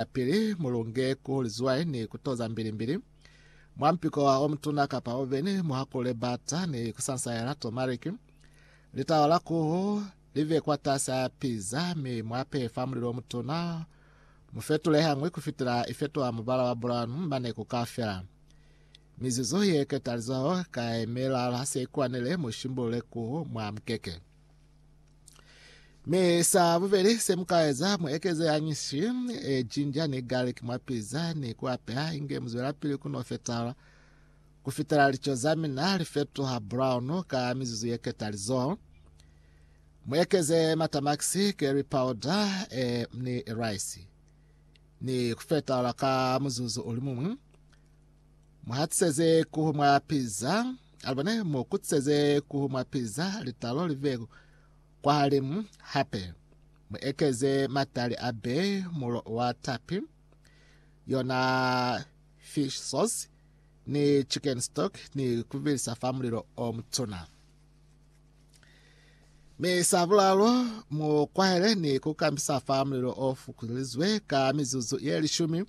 Yapili, mulunge ku lizwai ni ku toza mbilimbili mwa mpiko wa omutuna kapa oveni, muhakulule bata ni kusansaela tomariki. Litawa la kuhu live kwatasi a piza mi muapehe fa mulilo omutuna. Mufetule hañwi kufitela ifetoha mubala wa bulanu mane kukafela. Mizuzu ye ketalizaho ka yemelala se ikwanile, mushimbulule kuhu mwa mukeke. Mi sa bubeli se muka eza, mu ekeze hañi shi, e, ginger ni garlic mwa pizza ni ku apeha inge mu zwela pili ku no fetala ku fitela lico za mina li fetuha brown ka mizuzu ye ketalizoho. Mu ekeze matamakisi, curry powder, e, ni rice ni ku fetala ka muzuzu uli mumwi. Muhatiseze kuhu mwa piza, alibone mu kutiseze kuhu mwa piza litalo live kwahalimu hape. Mu ekeze matali a be mulo wa tapi, yona fish sauce ni chicken stock ni kuvilisa fa mulilo o mutuna. Mi sa bulalo mu kwahele ni kukambisa fa mulilo o fukulizwe ka mizuzu ye lishumi.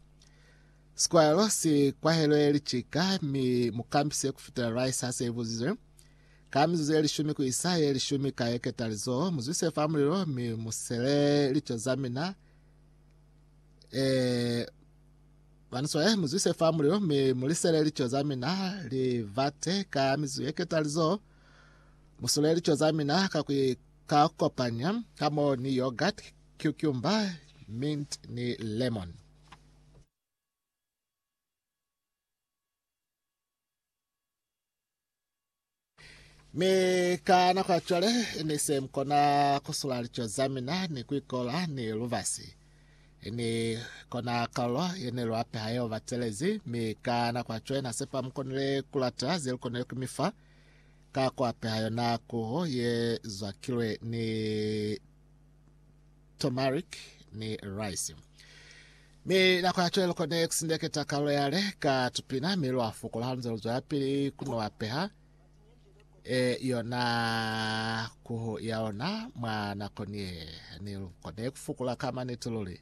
Sikwahelo si kwahelwe licika mi mukambi siyo kufitela Rice hase ibuzizwe. Ka mizuzu ye lishumi kuisa ye lishumi ka yeketa lizoho, muzwise fa mulilo mi musele lico za mina, eh, Baniswa, eh, muzwise fa mulilo mi mulisele lico za mina, livate, ka mizuzu yeketa lizoho, musule lico za mina ka kui ka kopanya hamoho ni yogurt, cucumber, mint ni lemon. Mi ka nako ya cwale, ni se mu kona ku sula lico za mina ni ku ikola ni lubasi. Ni kona kalulo ye ne lu apeha yeo batelezi, mi ka nako ya cwale na sepa mu konile ku lata ze lu konile ku mi fa ka ku apeha yona kuhu ye zwakilwe ni turmeric ni rice. Mi nako ya cwale lukone kusindeketa kalulo yale ka tupina mi lwa fukula halunze luzwela pili kunowa peha e yona kuhu ya lona mwa nako niye. Ni lukone kufukula ka maniti luli.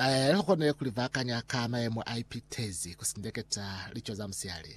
Eh, ukone kulivakanya ka mayemo a ipitezi kusindeketa lico za musiali.